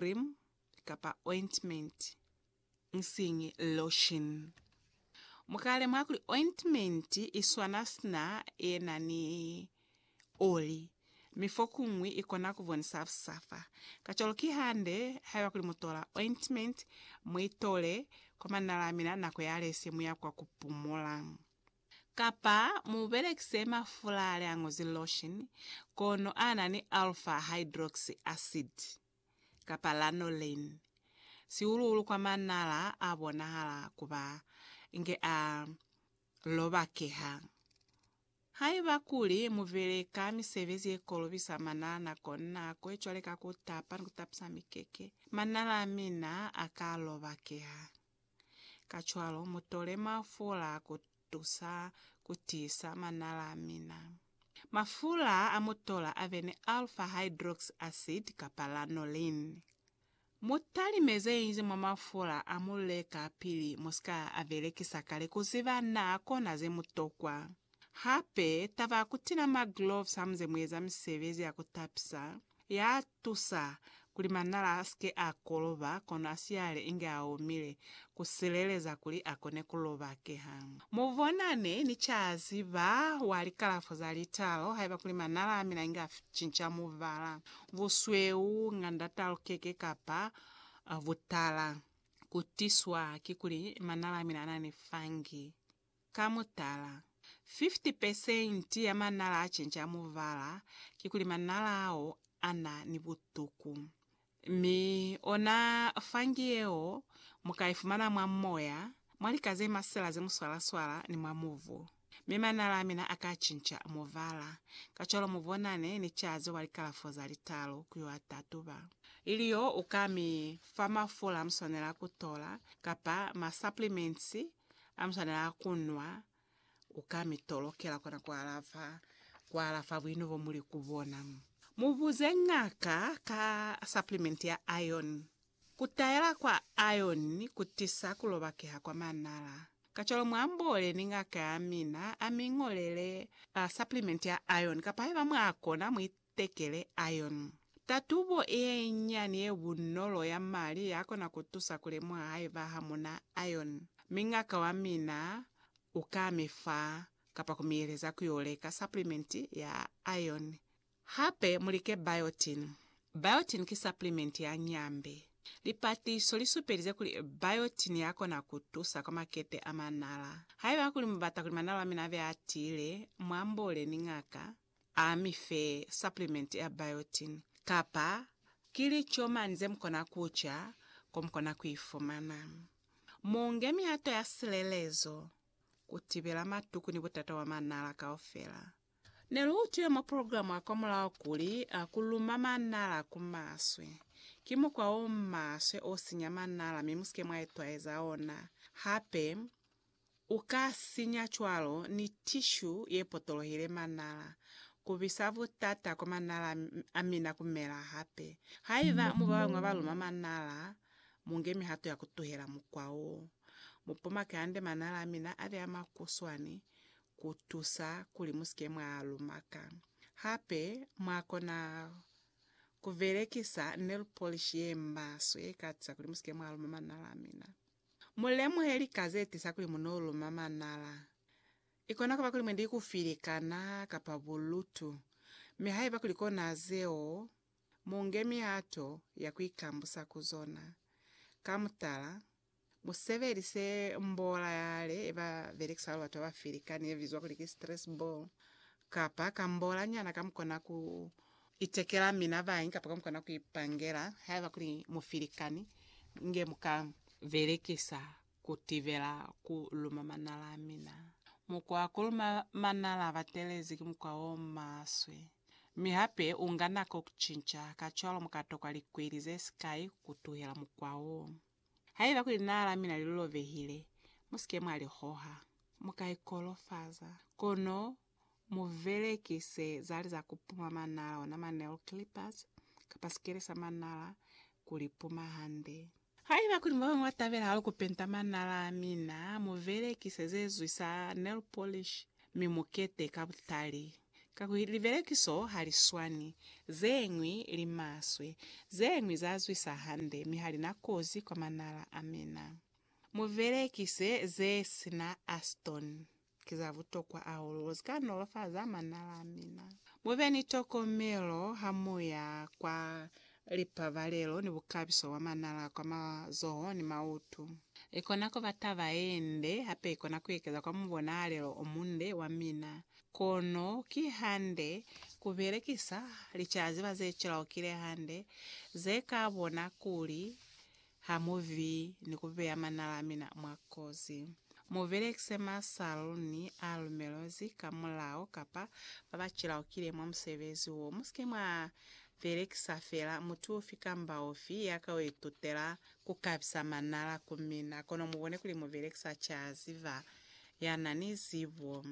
cream kapa ointment, nsiñi lotion. Mu ka lemuha kuli ointment i swana sina ye na ni oli, mi fokuñwi i kona ku bonisa busafa. Kacwalo ki hande haiba kuli mu tola ointment, mu i tole kwa manala a mina nako yalesye mu ya kwa ku pumula. Kapa mu belekise mafula le a ñozi lotion kono a na ni alpha hydroxy acid kapa lanolin, sihulu-hulu kwa manala a bonahala ku ba inge a lobakeha. Haiba kuli mu beleka misebezi ye kolobisa manala nako ni nako, cwale ka ku tapa ni ku tapisa mikeke, manala a mina a ka lobakeha. Kacwalo mutole mafula ku tusa ku tiisa manala a mina. Mafula a mu tola a be ni alpha hydroxy acid kapa lanolin. Mu talime ze ñi mwa mafula a mu leka pili mu si ka a belekisa kale ku ziba na kona ze mu tokwa. Hape, taba ya ku tila magloves hamu ze mu eza misebezi ya ku tapisa, Ya tusa kuli manala a si ke a koloba kono a siyale inge a omile, ku sileleza kuli a kone ku lobakeha. Mu bonane ni caziba wa likalafo za litalo haiba kuli manala a mina inge a cinca mubala, busweu, ngandatalukeke kapa butala. Ku tiswa ki kuli manala a mina a na ni fungi. Ka mutala, 50 pesenti ya manala a cenca mubala kikuli manala ao a na ni butuku. Mi ona fungi yeo mu ka i fumana mwa moya, mwa lika ze masela ze muswalaswala ni mwa mubu. Mi manala a mina a ka cinca mubala. Kacwalo mu bonane ni caze wa likalafo za litalu ku yo a tatuba. Ili yo u ka mi fa mafula mu swanela ku tola, kapa ma supplements Hamuswanela kunwa, ukamitolokela kona kualafa kualafa buino bomuli kubona. Mubuze ñaka ka supplement ya iron. Kutayela kwa iron kutisa kulobakeha kwa manala. Kacwalo muamboole ni ñaka yamina amiñolele supplement ya iron kapa haiba mwakona Bekele iron. Tatubo yenyinyani ye bunolo ya mali ya kona ku tusa ku lemuha haiba ha mu na iron, mi ngaka wa mina u ka mi fa kapa ku mi yeleza ku yo leka supplement ya iron. Hape mu like biotin. Biotin ki supplement ya nyambe. Lipatiso li supelize kuli biotin ya kona ku tusa kwa makete a manala. Haiba kuli mu bata kuli manala a mina a be a tiile, mu amboole ni ngaka. A mi fe supplement ya biotin, kapa ki lico mani ze mu kona ku ca ko mu kona ku i fumana. Mu nge mihato ya silelezo ku tibela matuku ni butata bwa manala kaufela. Ne lu utwile mwa program ya kwamulaho kuli ku luma manala ku maswe ki mukwa o maswe o sinya manala mi mu si ke mwa itwaeza ona hape. U ka sinya cwalo ni tishu ye potolohile manala, ku bisa butata kwa manala a mina ku mela hape. Haiba mu babañwi ba luma manala, mu nge mihato ya ku tuhela mukwa wo. Mu pomake hande manala a mina a be a makuswani ku tusa kuli mu si ke mwa a luma ka. Hape mwa kona ku belekisa nail polish ye maswe ye ka tusa kuli mu si ke mwa luma manala a mina. Mu lemuhe lika ze tisa kuli mu no luma manala. I kona ku ba kuli mwe ndi ku filikana kapa bulutu. Mi haiba kuli kona zeo, mu nge mihato ya ku ikambusa ku zona. Ka mutala, mu sebelise mbola yale ye ba belekisa kuli batu ba filikane ye bizwa kuli ki stress ball kapa kambola nyana ka mu kona ku Itekela mina bañi kapa kamukona kuipangela haiba kuli mufilikani nge muka belekisa kutibela ku luma manala a mina. Mukwa wa kuluma manala abatelezi ki mukwa o maswe, mi hape unga nako kucinca, kacwalo muka tokwa likweli zesikai kutuhela mukwa wo. Haiba kuli linala la mina lilolobehile, musike mwa lihoha. Muka ikolofaza, kono mu belekise zali za ku puma manala, ona ma nail clippers, kapa sikele sa manala, ku li puma hande. Haiba kuli babañwi ba tabela hahulu ku penta manala a mina, mu belekise ze zwi sa nail polish, mi mu kete ka butali. Kakuli libelekiso ha li swani, ze ñwi li maswe, ze ñwi za zwisa hande, mi ha li na kozi kwa manala a mina. Mu belekise ze si na acetone. Ki za butokwa hahulu ku si ka nolofaza manala a mina. Mu be ni tokomelo ha mu ya kwa lipabalelo ni bukabiso bwa manala kwa mazoho ni mautu. I kona ku ba taba ye nde, hape i kona ku ekeza kwa mubonahalelo o munde wa mina. Kono ki hande ku belekisa licaziba ze cilaukile hande, ze ka bona kuli Ha mu vi ni ku beya manala a mina mwa kozi. Mu belekise masaluni a lumelwezi ka mulao kapa ba ba cilaukile mwa musebezi wo. Mu si ke mwa belekisa fela mutu ufi kamba ufi ya ka itutela ku kabisa manala ku mina, kono mu bone kuli mu belekisa ca ziba ya na ni zibo.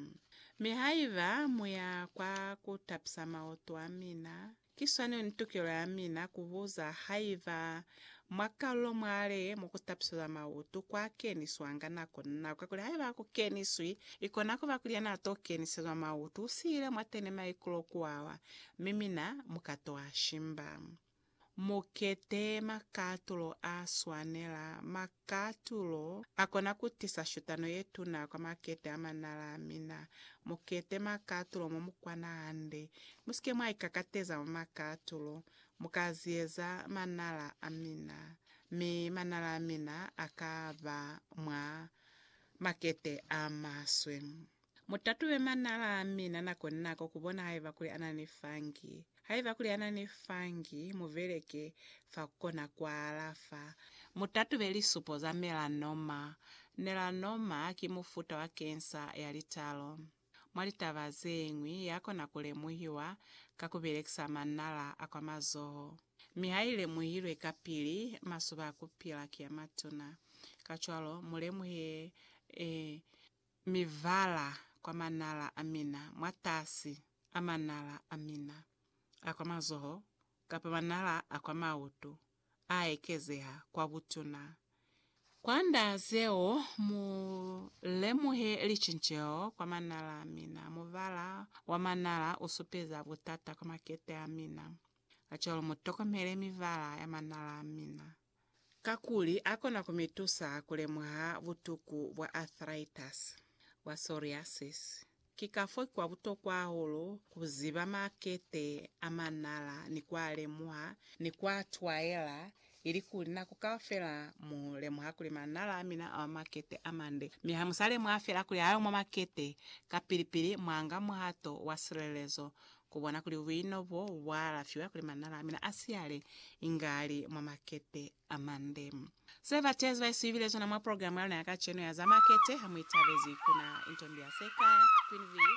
Mi haiba mu ya kwa ku tapisa mautu a mina, Ki swani ni tukelo ya mina kubuza haiba mwa kalulo mwale mo kutapiseza mautu kwa keniswanga nako ni nako, kakuli haiba aku keniswi, ikona kuba kuli yana to kenisezwa mautu usiile mwateni maikulo kuwawa, mi mina muka to ashimba. Mukete makatulo a swanela. Katulo, A kona ku tisa shutano ye tuna kwa makete a manala a mina. Mu kete makatulo mo mu kwana hande. Mu si ke mwa ikakateza mwa makatulo. Mu ka ziyeza manala a mina. Mi manala a mina a ka ba mwa makete a maswe. Mu tatube manala a mina nako ni nako ku bona haiba kuli ana ni fungi. Haiba kuli ana ni fungi, mu beleke fa ku kona ku a alafa. Mu tatube lisupo za melanoma. Melanoma ki mufuta wa kensa ya litalo. Mwa litaba ze ñwi, ya kona ku lemuhiwa ka ku belekisa manala a kwa mazoho. Mi ha i lemuhilwe kapili, masoba a ku pila ki a matuna. Kacwalo, mu lemuhe Mi vala kwa manala a mina, mwatasi a manala a mina a kwa mazoho kapa manala a kwa mautu a ekezeha kwa butuna. Kwa nda zeo, mu lemuhe licinceho kwa manala a mina. Muvala wa manala u supeza butata kwa makete a mina. Kacwalo mu tokomele mivala ya manala a mina. kakuli a kona ku mi tusa ku lemuha butuku bwa arthritis, bwa psoriasis. Ki kafo ki kwa butokwa hahulu ku ziba makete a manala ni ku a lemuha ni ku a twaela, ilikuli nako kaufela mu lemuha kuli manala a mina a makete a mande. Mi ha mu sa lemuha fela kuli ha yo mwa makete, kapili-pili mwa nga muhato wa silelezo Ku bona kuli buino bo bwa alafiwa kuli manala a mina a siyale inge a li mwa makete a mande. Se bateezi ba isuhibile sona mwa programe ya luna ya kacenu ya za makete ha mu itabezi ku na, Intombi ya Sekhaya, Queen V.